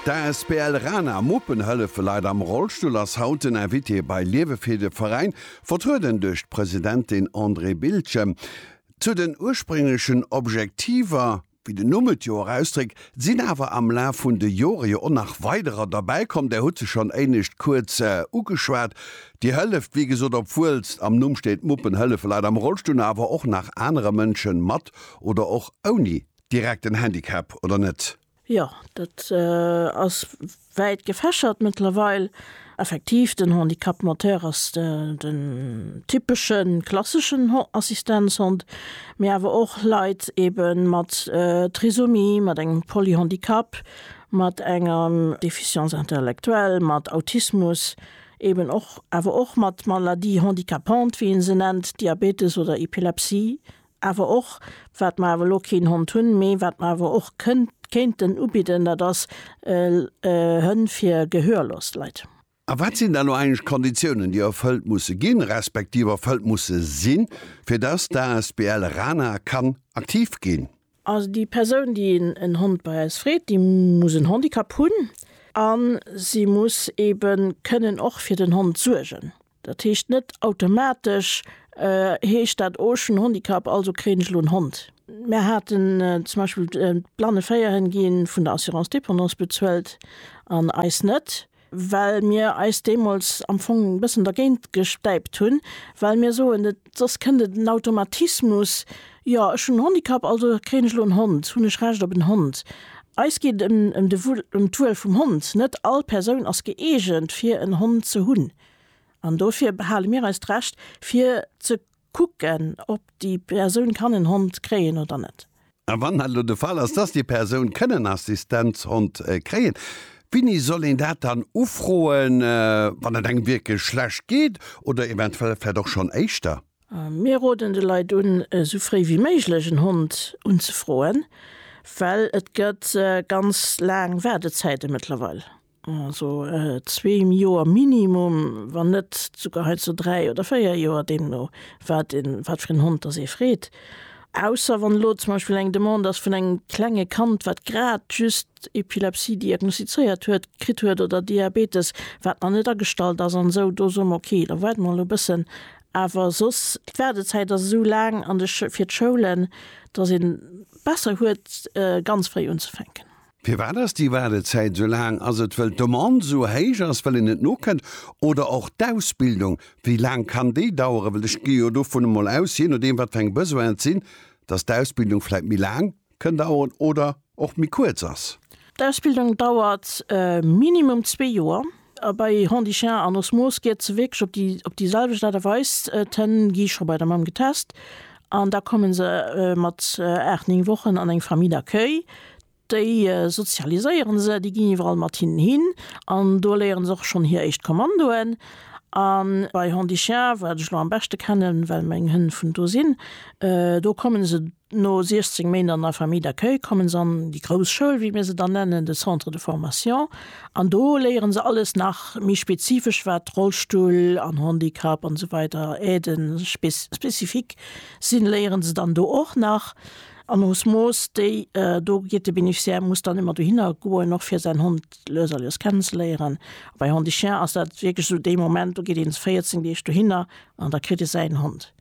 D'asbl Rana Muppen hëllefe Leit am Rollstull ass haut den Invité bei Liewe fir de Veräin, vertrueden duerch d'Presidentin Andrée Biltgen. Zu den ursprénglechen Objektiver, wéi den Numm et jo och ausdréckt, sinn awer am Laf vun de Jore jo och nach weiderer derbäi komm. Där hutt se schonn éinescht kuerz ugeschwat. Dir hëlleft, wéi gesot, obwuel s am Numm steet, Muppen hëllefe Leit am Rollstull, awer och nach anere Mënsche mat oder och ouni Direkt en Handicap oder net? Jo, dat ass wäit gefächert mëttlerweil. Effektiv, den Handicap moteur ass den typesche klasseschen Assistenzhond, mee awer och Leit ebe mat Trisomie, mat engem Polyhandicap, mat enger Déficience intellectuelle, mat Autismus, eben och awer och mat Maladie handicapante, wéi ee se nennt, Diabetes oder Epilepsie, Awer och, wat mer awer elo keen Hond hunn, mee wat mer awer och kéinten ubidden, dat ass Hënn fir gehörlos Leit. A wat sinn da elo eigentlech d'Konditiounen, déi erfëllt musse ginn, respektiv erfëllt musse sinn, fir dass d'asbl Rana kann aktiv ginn? Also déi Persoun, déi en Hond bei eis freet, déi muss en Handicap hunn a si muss eebe kënnen och fir den Hond suergen. Dat heescht net automatesch heescht dat oh ech hunn Handicap, also kréien ech elo en Hond. Mär haten zum Beispill d'blanne Féierhënn gi vun der Assurance dépendance bezuelt an eis net, well mir eis deemools am Fong e bëssen dergéint gestäipt hunn, well mir soen, et soss kënnt et en Automatismus, jo ech hunn en Handicap, also kréien ech elo en Hond, hunn ech Recht op en Hond. Eis geet et ëm d'Wuel vum Hond, net all Persoun ass gëeegent fir en Hond ze hunn. An dofir behale mir eis d'Recht, fir ze kucken, ob déi Persoun kann en Hond kréien oder net. A wann dat elo de Fall ass, dass déi Persoun kënn en Assistenzhond kréien, winni soll een dat dann ufroen, wann et engem wierklech schlecht geet oder eventuell vläicht och schonn éischter? Mir roden de Leit un, esou fréi wéi méiglech en Hond unzefroen, well et gëtt ganz laang Waardezäite mëttlerweil. Also zwee Joer minimum, wann net esouguer hei zu dräi oder véier Joer, deemno wat een, wat fir en Hond dass ee freet. Ausser wann elo zum Beispill eng Demande ass vun engem klenge Kand, wat grad just Epilepsie diagnostizéiert huet, kritt huet oder Diabetes, wat nach net agestallt ass an esou, do soe mer okay, da waarde mer elo e bëssen. Awer soss, d'Waardezäit ass esou laang an de, fir d'Schoulen, dass ee besser huet ganz fréi unzefänken. Firwat ass déi Waardezäit esou laang? Ass et wëll d'Demande esou héich ass, wëll een net nokënnt? Oder och d'Ausbildung, wéi laang kann déi daueren? Well ech gi jo dovun emol aus, jee nodeem wat fir eng Besoinen et sinn, datt d'Ausbildung vläit méi laang kënn daueren oder och méi kuerz ass. D'Ausbildung dauert minimum zwee Joer. A bei Hon dit chien an Osmose geet se wierklech op déi op déi selwecht Aart a Weis. D'Hënn gi scho bei der Mamm getest an da komme se mat aacht, néng Wochen an eng Famille d'accueil. Déi sozialiséiere se, déi ginn iwwerall mat hinnen hin an do léiere se och schonn hir éischt Kommandoen. A bei Hon dit chien, wat ech elo am beschte kennen, well meng Hënn vun do sinn, do komme se No 16 Méint an der Famille d'accueil kommen se an déi grouss Schoul, wéi mir se dann nennen, de Centre de formation. An do léieren se alles nach méi spezifesch, wat Rollstull an Handicap an esou weider, Aiden spécifiques sinn, léieren se dann do och nach. An osmos déi do geet, de Bénéficiaire muss dann ëmmer dohinner goen, och fir säin Hond lues a lues kennenzeléieren. A bei Handi-Chien ass dat wierklech esou dee Moment, do geet ee 14 Deeg dohinner an da kritt e säin Hond.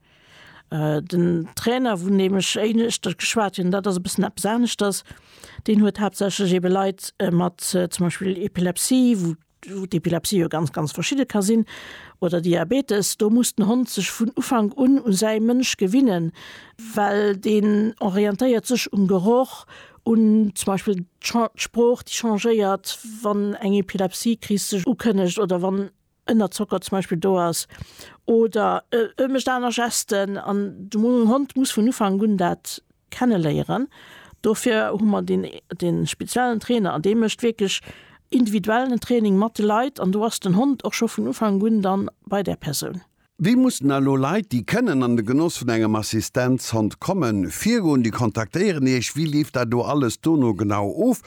Den Trainer, vun deem ech éischter geschwat hunn, dat ass e bëssen eppes aneschters. Deen huet haaptsächlech ebe Leit mat zum Beispill Epilepsie, wou wou d'Epilepsie jo ganz, ganz verschidde ka sinn, oder Diabetes. Do muss den Hond sech vun Ufank un u säi Mënsch gewinnen, well deen orientéiert sech um Geroch, un zum Beispill d'Sprooch, déi changéiert, wann eng Epilepsiekris sech ukënnegt oder wann. ënnerzockert zum Beispill do ass oder e mécht aner Gesten an de Hond muss vun Ufank un dat kenne léieren. Dofir hu mer deen dee speziellen Trainer an dee mécht wierklech individuellen Training mat de Leit an do ass den Hond och scho vun Ufank un dann bei där Persoun. Wéi mussen elo Leit, déi kënnen an de Genoss vun engem Assistenzhond kommen, virgoen? Déi kontaktéieren Iech. Wéi leeft dat do alles dono genau of?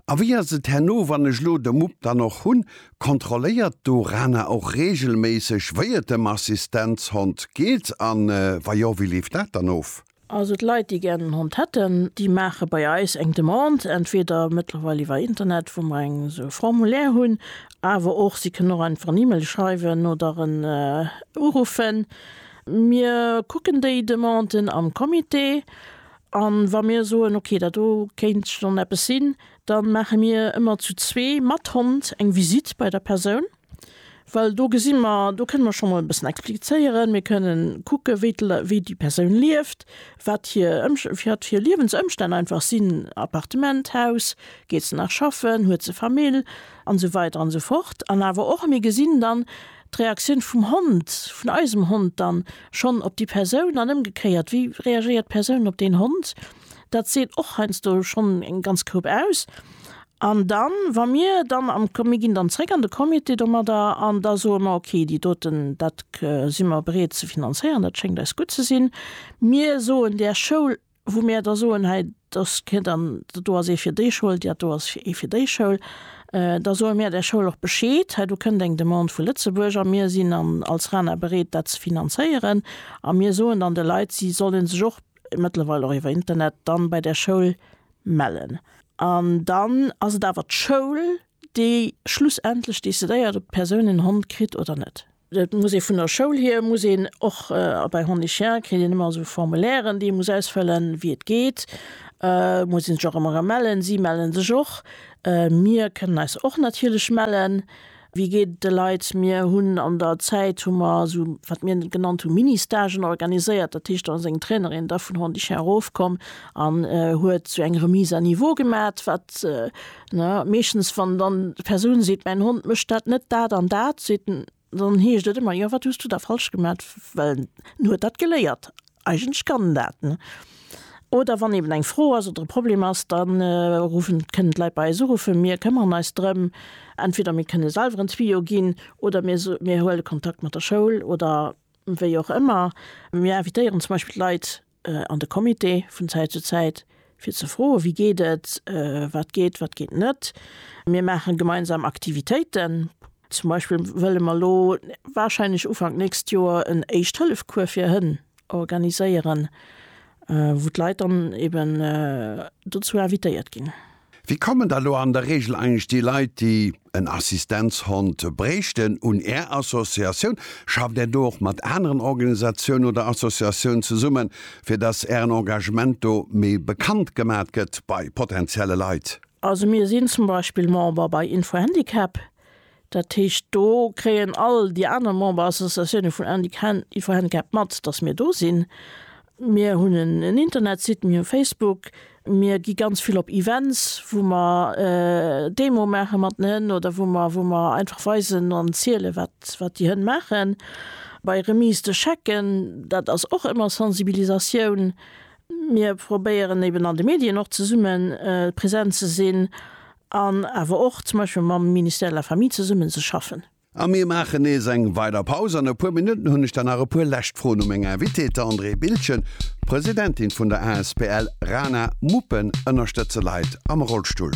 A wéi ass et herno, wann ech elo de Mupp dann och hunn? Kontrolléiert d'ORANA och reegelméisseg, wéi et dem Assistenzhond geet? A wa jo, wéi leeft dat dann of? Also d'Leit, déi gären en Hond hätten, déi maache bei eis eng Demande, entweder mëttlerweil iwwer Internet, wou mer eng esou e Formulaire hunn, awer och si kënnen och einfach en E-Mail schreiwen oder en uruffen. Mir kucken déi Demanden am Comité an wa mir soen, ok, dat do kéint schonn eppes sinn, da maache mir ëmmer zu zwee mat Hond eng Visitt bei der Persoun. Well do gesi mer, do kënne mer scho mol e bëssen explizéieren, mir kënne kucke wéi d'Lei, wéi déi Persoun lieft, wat hir Ëmst, wat hir Liewensëmstänn einfach sinn, Appartement, Haus, geet se nach schaffen, huet se Famill an esou weider an esou fort. An awer och mir gesinn dann d'Reaktioun vum Hond, vun eisem Hond dann schonn op déi Persoun an ëmgekéiert, wéi reagéiert d'Persoun op deen Hond, dat seet och heiansdo schonn eng ganz Group aus. An dann, wa mir dann am, mir ginn dann zréck an de Comité domadder an da soe mer, okay, déi doten, dat si mer bereet ze finanzéieren, dat schéngt eis gutt ze sinn. Mir soen där Schoul, wou mir da soen, hei, dass kee dann, do ass ee fir déi Schoul, dat do ass ee fir déi Schoul, da soe mir där Schoul och Bescheed, hei do kënnt eng Demande vu Lëtzebuerg a mir sinn als RaNA bereet, dat ze finanzéieren. A mir soen dann de Leit, si solle sech och, mëttlerweil och iwwer Internet, dann bei där Schoul mellen an dann ass et awer d'Schoul déi schlussendlech decidéiert op d'Persoun en Hond kritt oder net. Et muss ee vun der Schoul hier muss een och a bei Hond et Chien kritt een ëmmer esou Formulairen déi ee muss ausfëllen wéi et geet muss een sech och ëmmer erëm mellen. Si melle sech och, mir kënnen eis och natierlech mellen. Wéi geet et de Leit? Mir hunn an der Zäit hu mer esou, wat mir genannt hu Ministagen organiséiert. Dat heescht, da ass eng Trainerin da vun Hondichen erofkomm an huet sou eng Remise à niveau gemat, wat ne meeschtens, wann dann d'Persoun seet, mäin Hond mécht dat net dat an dat, seet en, dann heescht et ëmmer, jo wat hues du da falsch gemat? Well en huet dat geléiert. Eigentlech kann en dat. Oder wann eben eng Fro ass oder e Problem ass, da ruffen, kënnen d'Leit bei eis uruffen. Mir këmmeren eis drëm. Entweder mir kënne selwer en Tuyau ginn oder mir so, mir huele Kontakt mat der Schoul oder wéi och ëmmer. Mir invitéieren zum Beispill d'Leit an de Comité vun Zäit zu Zäit, fir ze froe wéi geet et, wat geet, wat geet net. Mir maache gemeinsam Aktivitéiten. Zum Beispill wëlle mer elo warscheinlech Ufank nächst Joer en Éischt-Hëllef-Cours fir Hënn organiséieren, wou d'Leit dann eben dozou invitéiert ginn. Wéi kommen da lo an der Reegel eigentlech déi Leit, déi en Assistenzhond bréichten, un Är Associatioun? Schafft Är do och mat aneren Organisatiounen oder Associatiounen zesummen, fir dass Ären Engagement do méi bekannt gemat gëtt bei potentielle Leit? Also mir sinn zum Beispill Member bei Info-Handicap, dat heescht do kréien all déi aner Memberassociatioune vun Info-Handicap mat, datt mir do sinn. Mir hunn en Internetsite, mir hu Facebook, mir gi ganz vill op Events, wou mer Demoe maache mat den Hënn oder wou mer wou mer einfach weisen an ziele wat wat déi Hënn maachen. Bei Remise de Chèquen, dat ass och ëmmer Sensibilisatioun. Mir probéieren eben an de Medien och zesumme present ze sinn an awer och zum Beispill mam Ministère de la Famille zesummen ze schaffen. A mir maachen nees eng weider Paus. An e puer Minutten hunn ech dann nach e puer lescht Froen u meng Invitée, d'Andrée Bildgen, Presidentin vun der asbl Rana Muppen ënnerstëtze Leit am Rollstull.